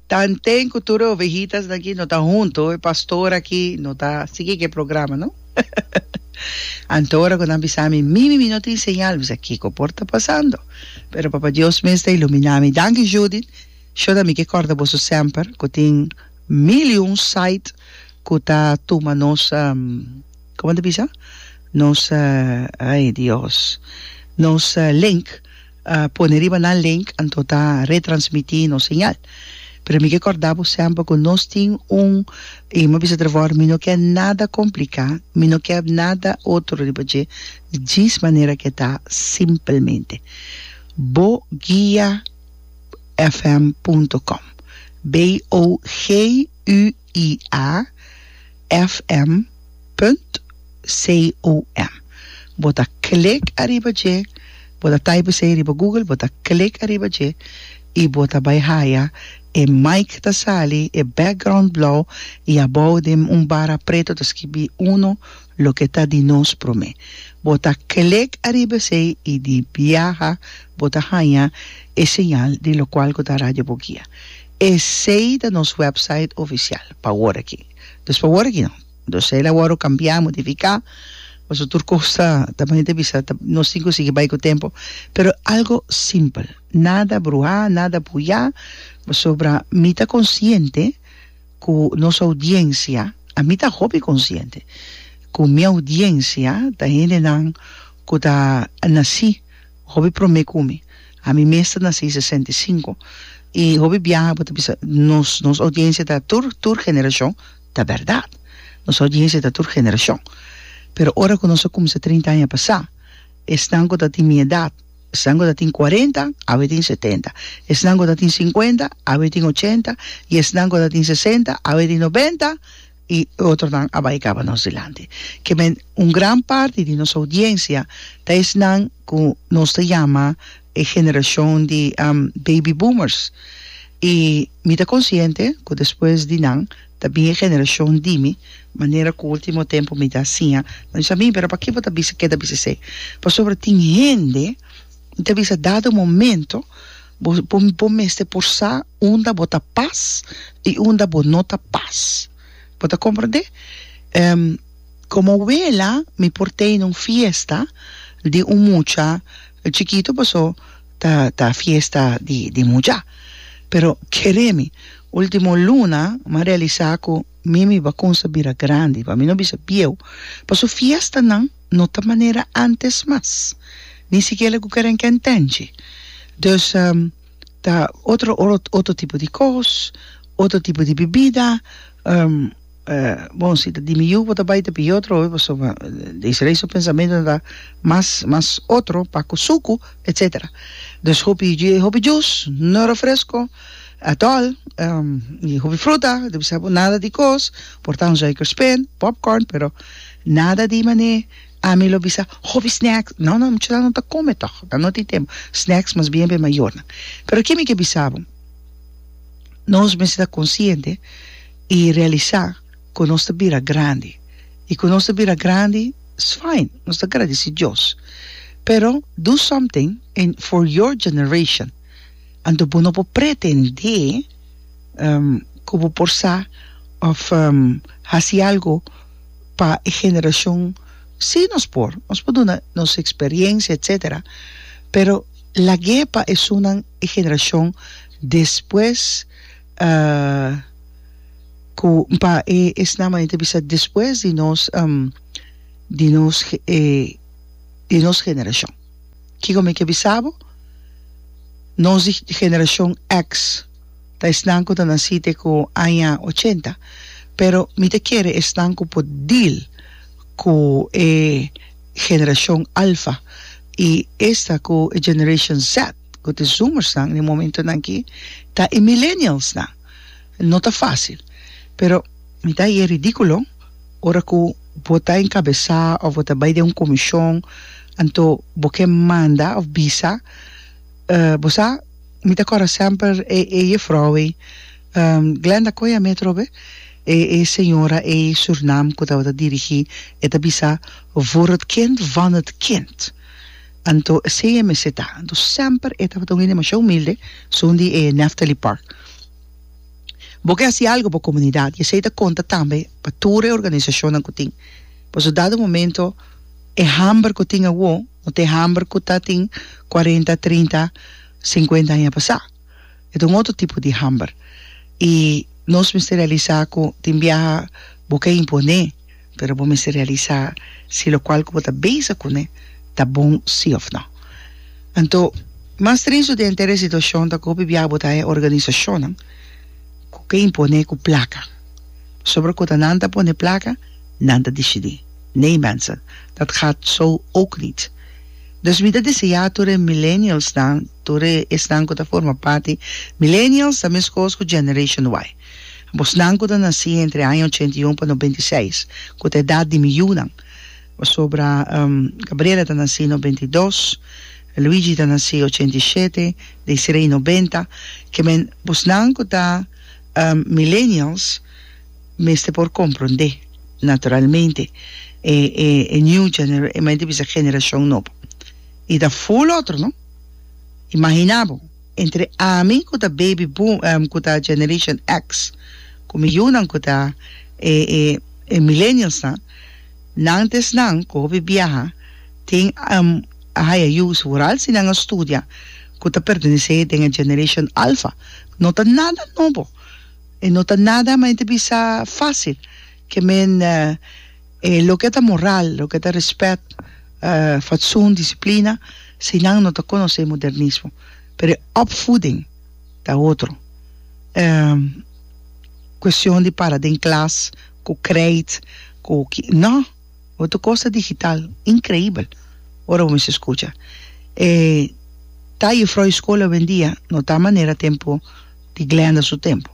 Tanten cu tur e ovejitasnan aki no ta hunto, e pastor aki no ta sigui cu e programa, no? Anto ora cu nan bisa mi, mi, mi, mi no tin señal, mi sa, kico por ta pasando? Pero Papa Dios mes ta ilumina mi. Danki Judith, shona mi ke corda boso semper cu tin mil y un site cu ta tuma nos, como nan ta bisa? Nos, ay Dios, nos link. pone riba nan link anto ta retransmiti nos señal pero mi ke corda bo semper cu nos tin un y mi a bisa tref ahora mi no kier nada complica mi no kier nada otro riba dje djis manera ke ta simplemente bo guia fm punto com BOGUIA iafm punt com bo ta klik ariba dje bo ta type esei riba google bo ta klik ariba dje y bo ta bai haya e mic ta sali e background blauw y abou den un bara preto ta skibi uno loke ta di nos prome bo ta klik ariba esei y di biaha bo ta haya e señal di lokual ku ta radio bogia. Esei ta nos website oficial pa awor aki. Dus pa awor aki no. Dos esei la wòrdu kambiá, modifiká, pasobra tur kos ta, ta manera ta bisa, ta, nos tin ku sigui bai ku tempu, pero algo simpel, nada bruhá, nada puyá, pasobra mi ta konsiente ku nos oudiensia, ami ta hopi konsiente ku mi oudiensia ta hendenan ku ta nasí. Hopi prome cu mi. Ami mes ta naci sesenta y cinco y hopi biaha bo ta bisa nos nos audiencia ta tur tur generacion ta berdad nos audiencia ta tur generacion pero ora cu nos a cuminsa trinta aña pasa esnan cu ta tin mi edad esnan cu ta tin cuarenta awe tin setenta esnan cu ta tin cincuenta awe tin ochenta y esnan cu ta tin sesenta awe tin nobenta i e otronan a bai kaba nos dilanti. Kimen un gran parti di nos oudiensia ta esnan ku nos ta yama e generashon di baby boomers i mi ta konsiente ku despues di nan ta bin e generashon di mi, manera ku último tempu mi ta siña ta bisa mi, pero pakiko bo ta bisa, ke ta bisa esei? Pasobra tin hende mi ta bisa dado momento. Bo bo bo mester por sa unda bo ta pas y unda bo no ta pas bo ta comprende em como wela mi por tene un fiesta di un mucha chikito paso ta ta fiesta di di mucha pero keremi ultimo luna ma realisa ku mi mi bakunsa bira grandi pa mi no bisa bieu paso fiesta nan. no ta manera antes mas, ni sikiera ku keren ke entenchi. Dus ta otro otro tipo di kos, otro tipo di bibida, bon si ta di mi yu bo ta bai ta pidi otro hopi paso desde rei su pensamentu no ta mas mas otro pa ku suku etsetera. Dus hopi hopi jus, no refresko, atol, hopi fruta, debí sa bo nada di kos, por ta un zuikerspin, popcorn, pero. Nada di man'é ami lo bisa hopi snacks no no muchanan no ta come tog nan no tin tempo snacks mas bien pa e mayornan pero ke mi ke bisa bo nos mester ta consciente y realisa cu nos ta bira grandi y cu nos ta bira grandi is fine nos ta agradeci Dios pero do something en for your generation anto bo no por pretende cu bo por sa of haci algo pa e generashon si nos por nos por duna nos eksperiencia etsetera pero lag'é pa esunnan e generashon despues ku pa e esnan mane ta bisa despues di nos di nos di nos generashon kiko mi ke bisa bo nos di generashon X. Ta esnan cu ta naci te cu aña ochenta, pero mi ta kere esnan cu por deal cu e generacion Alfa y esta cu e Generation Z, cu ta e Zoomersnan n'e momentonan aki, ta e Millennialsnan. No ta facil, pero mi ta haye ridiculo ora cu bo ta encabeza of bo ta bay den un comision anto bo ke manda of bisa, Bo sa, mi ta kòrda semper e e jefrou ei, Glenda koe a metro be, e e señora ei Surinam ku tabata dirigí, e ta bisa, Voor het kind van het kind. Anto esei e mester ta. Anto semper e tabata un hende mashá humilde, sun di e Nephtaly Park. Bo ke hasi algu pa komunidat i esei ta konta tambe pa tur e organisashonnan ku tin. Paso dado momento e hamber ku tin awor. No te hamber cu ta tin cuarenta, trinta, cincuenta aña pasá. E ta un otro tipo di hamber. Y nos mester realisa cu tin biaha bo ke imponé, pero bo mester realisa si locual cu bo ta bezig cune ta bon si of no. Anto, mas tristo di henter e situacion ta cu hopi biaha bo ta haña organisacionnan cu ke imponé cu placa. Pasobra cunda nan ta pone placa, nan ta dicidi. Nee mensen, dat gaat zo ook niet. Dus mi ta desea tur e millennialsnan, tur e esnan cu ta forma parti, millennials ta mescos cu Generation Y. Abosnan cu ta naci entre e aña ochenta i un pa nobenta i seis, cu ta edad di mi yunan, pasobra Gabriela ta naci nobenta i dos, Luigi ta naci ochenta i shete, Desiree nobenta, kemen, bosnan cu ta millennials, mester por comprende naturalmente e e e new genera e mester bisa generacion nobo y ta full otro no imagina bo entre ami cu ta baby boom em cu ta generation X cu mi yunan cu ta e e e millennials nan nan ta esnan cu hopi biaha tin em a haya yu sigural si nan a studia cu ta pertenece den e generation alfa no ta nada nobo E no ta nada maente bisa facil ke men e loke ta moral, loke ta respet, fatsoen, disiplina, si nan no ta conoce modernismo. Pero e opvoeding ta otro. Cuestion di para den klas cu kreit cu ki, no! bo ta cosa digital increibel ora bo mester scucha e ta juffrouw e school awendia no ta manera tempo di Glenda su tempo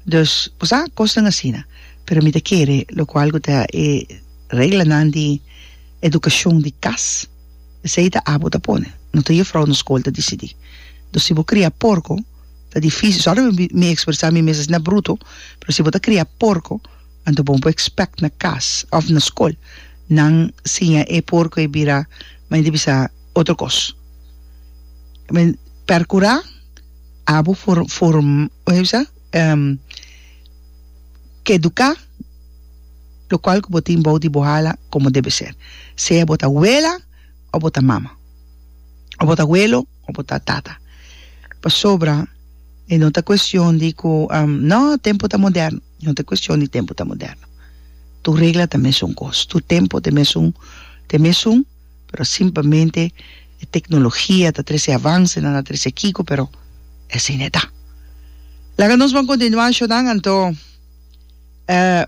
dus bo sa cosnan asina pero mi ta kere locual cu ta e reglanan di educacion di cas esey ta abo ta pone no ta juffrouw na school ta dicidi dus si bo cria porco ta difici sorry mi expresa mi mes asina bruto pero si bo ta cria porco Anto bon bo expect na cas of na scol nan siña e por cu e bira ma e di bisa otro cos. Men percura abo for form hoe se bisa educa lo cual cu bo tin bao di bo hala como debe ser sea bo ta wela of bo ta mama of bo ta welo of bo ta tata pasobra e no ta cuestion di cu no tempo ta moderno. No ta cuestion di tempo ta moderno. Tur regla ta mesun cos. Tur tempo ta mesun ta mesun, pero simplemente e tecnologia ta trece avance, nan a trece kico, pero esey e ta. Laga nos ban continua ashonan anto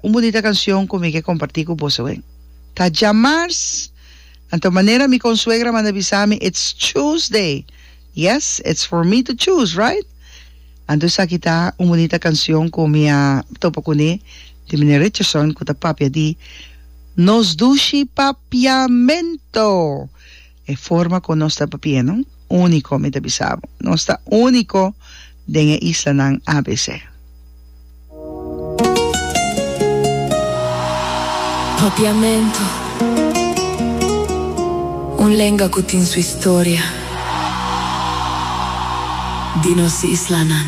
un bunita cancion cu mi ke comparti cu bosoen. Ta djamars, anto manera mi consuegra manda bisa mi, it's Tuesday, yes, it's for me to choose, right? Anto esaki ta un bunita cancion cu mi a topa cune di Meneer Richardson cu ta papia di Nos Dushi Papiamento! E forma cu nos ta papieno unico, mi ta bisa bo. Nos ta unico den e islanan abc. Papiamentu, un lenga ku tin su historia di nos islanan.